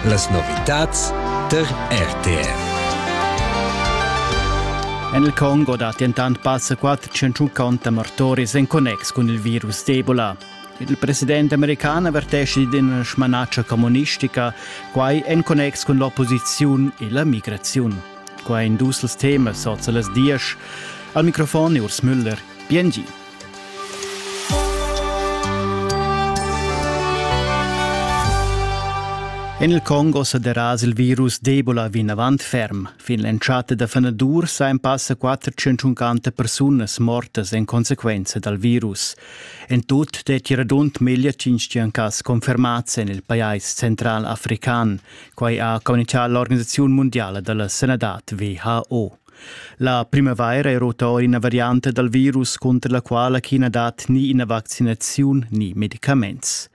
Las novitads tar RTR. En il Congo dat dentant passa qua 150 mortoris en connex cun il virus d'Ebola. Il president american avertesce d'ina smanatscha communistica, quai en connex cun l'opposiziun e la migraziun. Quai in dus temas sot las dies. Al microfon Urs Müller, PNG. En il Congo sa deras il virus d'Ebola vinavant ferm. Fin l'entschatta da fenadur sain passa 450 persunas mortas en consequenza dal virus. En tut detti radund meglio 500 cas confermats en il pajais central african. Quai ha communicato l'Organisazione Mondiale della Sanità WHO. La primavaira è ruta or ina varianta dal virus cunter la quala ch'i na dat ni ina vaccinaziun ni medicaments.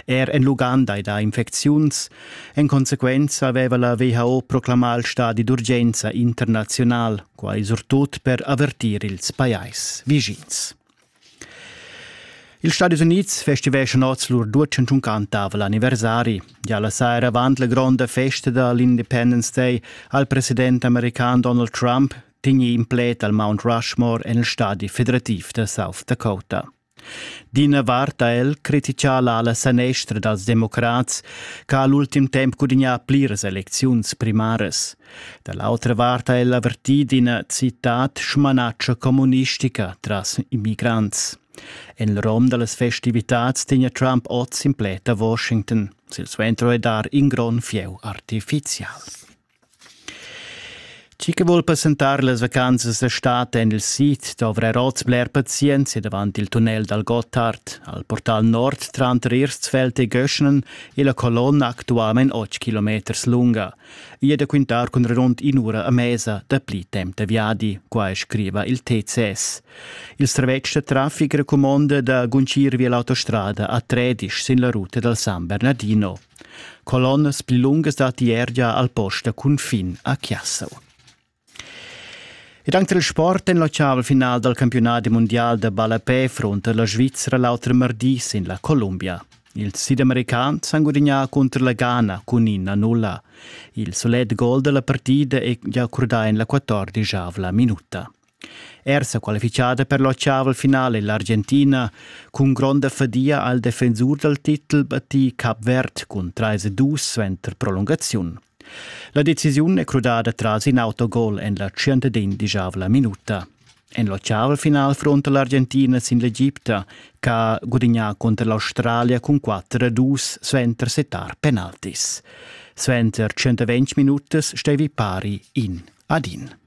Er en l'Uganda è da infecziuns. En consequenza aveva la WHO proclamà il stadi d'urgenza internazional, quai surtut per avertir ils pajais vischins. Ils Stadis Unids festiveschan oz lur duecentschunquantava l'anniversari. Gia la saira avant la gronda festa da l'Independence Day ha il president american Donald Trump tegnì in pled al Mount Rushmore en il stadi federativ da South Dakota. D'ina vart ha el criticà l'ala sanestra dals democrats che ha l'ultim temp gudignà pliras elecziuns primaras. Da l'autra vart ha el avertì d'ina citad smanatscha communistica tras immigrants. En il rom da las festivitads tegna Trump oz in pled a Washington. Silsuentro è dar in grond fieu artifizial. Chi che vuol presentar las vacanzas d'estate en il sid dovrà oz bler pazienza davant il tunnel dal Gotthard, al portal nord tranter Irstfeld e Göschnen e la colonna actualmain 8 km lunga. I è da quintar cun redond in'ura a mesa da pli temp da viadi, quai scriva il TCS. Il servetsch da traffic recumonda da guncir via l'autostrada a Tredisch sin la ruta dal San Bernardino. Colonnas pli lungas datti er gia al post da cunfin a Chiassau. Ed anc dal sport en l'ocean final dal campiunadi mundial da ballapè frunta la Svizra l'auter mardi sin la Columbia. Ils sidamericans han gudagnà cunter la Ghana cun in a nulla. Il sulet gol da la partida è gia accordà en la quattordischavla minuta. Er sa qualifichada per l'ocean finale l'Argentina cun gronda fadia al defensur dal titel battì Cap Verd cun 3-2 suenter prolungaziun. La decisiun è crudada tras in autogol en la 115 minuta. En l'ocean final fronta l'Argentina sin l'Egipta, che gudignà contro l'Australia cun 4-2 suenter setar penaltis. Suenter 120 minutas stevi pari in ad in.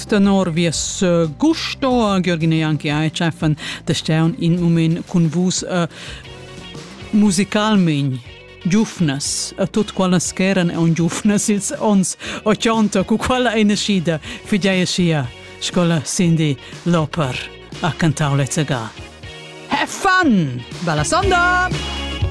tenor vies gusto Gürgen e anche ai cheffen de steun in moment cun vus uh, musicalmein giufnas a tut quallas ch'eran on giufnas ils ons 80 cu quella eine schida fidei sia scola Cindy Loper a cantau le Have fun! Bella sonda!